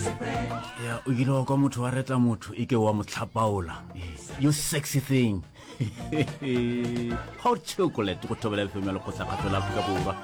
Yeah, you know, kwa motho wa retla motho e ke wa mo tlhapaola you sexy thing hot chocolate go thobela fm ya lekgotla kgatho la aforika borwa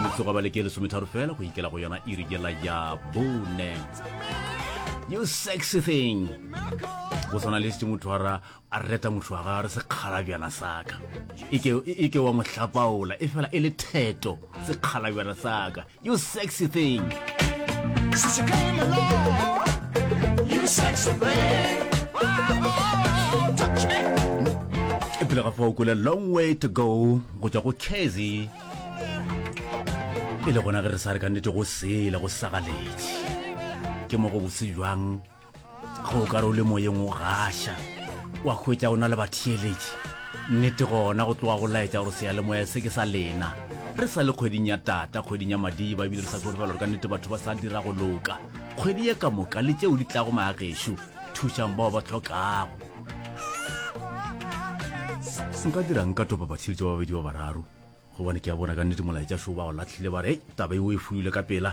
motsogo ba leke lesometharo fela go ikela go yona e rikela ya bone you sexy thing go tshwana le setse motho wa ra A re reta mošo wa gago re sekgalabjana sa ka. E ke, e ke wa mo hlapaola, e fela e le theto, sekgalabjana sa ka. You sexy thing. Since you came along, you sexy thing. e pele ga fa o kole long way to go go tšwa go casy e le gona ge re sa re ka nnete go sele go sagaletše ke mo go bose jwang go o ka re o le moyeng o gaša wa hwetša o na le batheeletši nnete gona go tloga go laetša gore seyalemoya se ke sa lena re sa le kgweding ya tata kgweding ya madiba ebile re sa tsore fela gore ka nnete batho ba sa dira go loka kgwedi ye ka moka le tšeo di tlago maagešo thušang bao ba tlhokago nka dirang ka topa batheeletši ba babedi ba bararo gobane ke a bona ka nnete molaetša šoo ba go latlhile ba re taba eo e fuile ka pela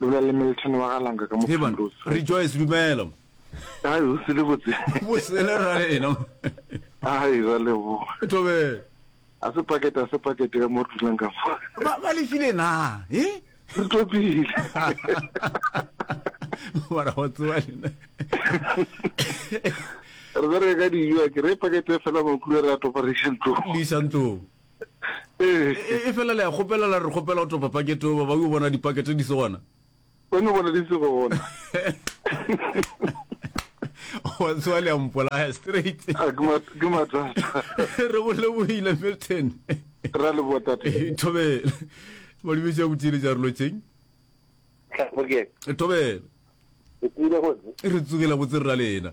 Lona le Milton wa ga Langa ka mo Heban, Primrose Street. Rejoice, dumela. Hai, ho se le botse. Bosele ra rena. Hai, ra leboga. Thobela. A se pakete, a se pakete ka mo re dulang ka fa. Ba, ba lefile na? He? Re topile. Mara go tsewa lena. Re bereka ka dijo, a ke re pakete fela makhura re a topa re iša ntlong. Le iša ntlong. ee e, e fela le ya kgopela la re kgopela go topa pakete oba ba yo bona dipakete di se gona ba no bona di se gona wa tsoa le a mpolaya straight ah, ke mathata re go lebohile milton ra le botate eh, thobele malibetsi ya botsile ja re lotseng thobele re tsogela botse rra lena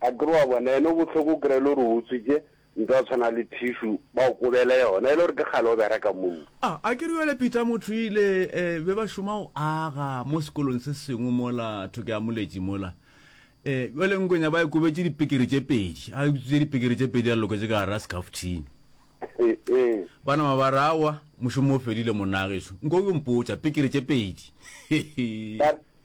Akere wa bona yena o bohloko o kry-e le gore o utswitše nto a tshwana le tissue ba o kobele yona e le gore ke kgale o bereka moo. A, a ke re bjale Peter Mothoile e be ba šoma go aga mo sekolong se sengwe mola thoko ya Moletši mola. E, bjale Ngwenya ba e kobetše dipikiri tše pedi, a utswitše dipikiri tše pedi a loketše ka gara sekafuthini. Ba nama ba re aowa mošomo o fedile monnaagešo, nko o yo mpotša, pikiri tše pedi.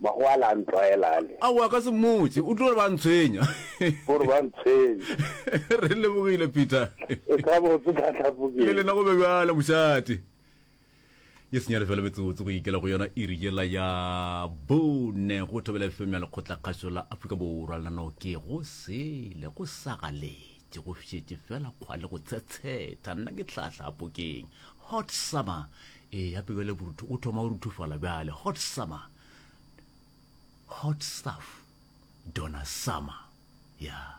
Magwala a ntlwaela a le. Aowa, ka se mmotše. O tlo re ba ntshwenya. O re ba ntshwenya. Re lebogile, Peter. E ka botse ka tlhapokeng. Le lena go be bjalo, mošate. Ye senyane fela metsotso go ikela go yona iri yela ya bone go thobela FM ya lekgotlakgašo la Afrika Borwa le nano ke go sele go sagaletše go šetše fela kgwale go tshetsheta nna ke tlhahlapokeng hot summer Ee, ya pe bjale borutho o thoma o ruthofala bjale. Hot summer. Hot stuff. Donna Summer. Yeah.